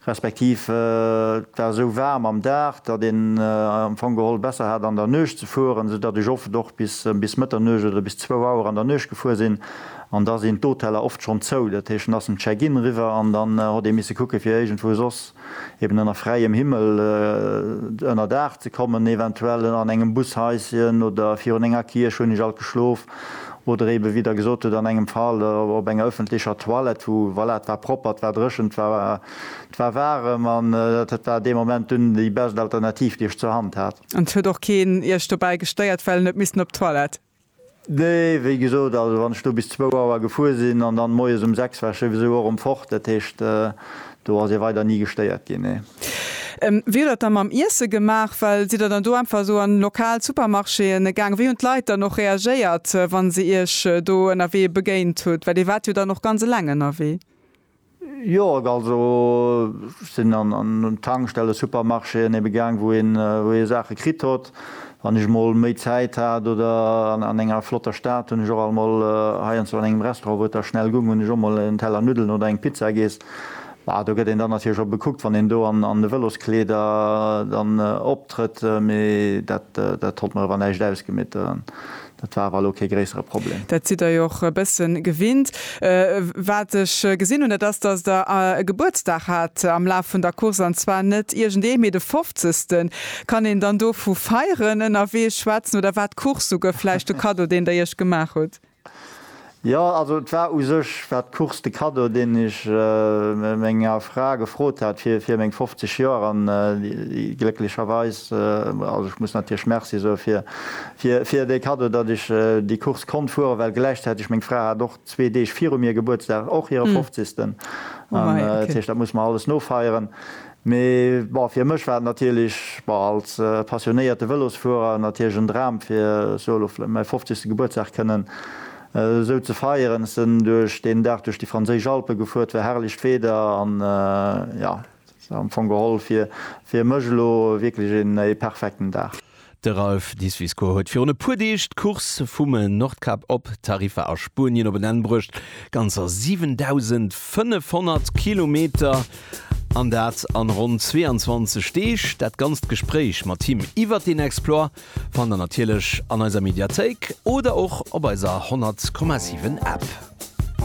respektiv et war esou waarm am Dag, datt een am Fong geholl besser hat an der Nuecht ze fueren, sou datt ech oft och bis Mëtternuecht oder bis zwou Auer an der Nuecht gefuer sinn an da sinn d'Hoteller oft schonn zou. Dat heescht, en ass um Check-in eriwwer an dann hott ee misse kucke fir iergendwou soss eben ënner fräiem Himmel ënnerdaach ze kommen, eventuell an engem Bushaischen oder virun enger Kierch hunn ech alt geschlof. oder eeben, wéi Der gesot hutt, an engem Fall op enger öffentlecher Toilette, wou, voilà, et war propper, et war dréchen, et war, et war waarem an et war dee Moment dunn déi bescht Alternativ, déi ech zur Hand hat. An et huet och keen Iech dobäi gestéiert, well en huet missen op d'Toilette? Nee, wéi gesot, also wann ech do bis zwou Auer gefuer sinn an dann moies um sechs war ech souwisou och erëm fort, dat heescht, Do ass ee weider ni gestéiert ginn, nee. Wéi hutt der dann mam Iesse gemaach? Well sidd der dann do einfach esou an lokal Supermarchéen gaang? Wéi hunn d'Leit dann och reagéiert, wa se iech do ënnerwee begéint hunn? Well dir waart jo dann och ganz eleng ënnerwee. Jo, also ech sinn an Tankstellen, Supermarchéen ebe gaang, wou ee Saache kritt hott. Wann ech emol méi Zäit hat oder an enger flotter Stad, hunn ech och emol heiansdo an engem Restaurant, wou et da schnell gung, hunn ech och emol en Teller Nuddelen oder eng Pizza giess. Bah, do gëtt een dann natierlech och bekuckt, wann een do an de Vëloskleeder dann optrëtt. Mee dat, dat hott mer ewer näischt ausgemitt. Dat war awer elo kee gréissere Problem. Dat sidd der jo och e bëssen gewinnt. Wat ech gesinn hunn, dat ass, dass der e Gebuertsdag hat am Laf vun der Course, an zwar net iergendee, mee de Fofzegsten. Kann een dann do vu Feieren ënnerwee schwätzen, oder war d'Course souguer vläicht de Kaddo, deen der iech gemaach hutt? Jo, also et war u sech war d'Course de Cadeau, deen ech menger Fra gefrot hat fir fir meng 50 Joer an déi glécklecherweis, also ech muss natierlech Merci soe fir fir fir dee Cadeau, datt ech déi Course konnt fueren, well gläichzäiteg meng Fra hat och zwee Deeg viru mir Gebuertsdag, och hire 50. An dat heescht, dat muss mer alles nofeieren. Mee bon, fir mech war et natierlech, bon, als passionéierte Vëlosfuerer natierlech en Dram, fir soe lo vläicht mäi fofzegste Gebuertsdag kënnen esou ze feieren. Ech sinn duerch deen Dag duerch déi franséisch Alpe gefuer, et war herrlecht Wieder an jo, et ass am Fong geholl fir mech elo wierklech ee perfekten Dag. De Ralph Diefwisko huet virun e puer Deeg d'Course vum Nordkap op Tarifa a Spuenien op en Enn bruecht. Ganzer 7.500 Kilometer an dat an ronn 22 Deeg. Dat ganzt Gespréich mat him iwwert deen Exploit fannt der natierlech an eiser Mediathéik oder och op eiser 100,7 App.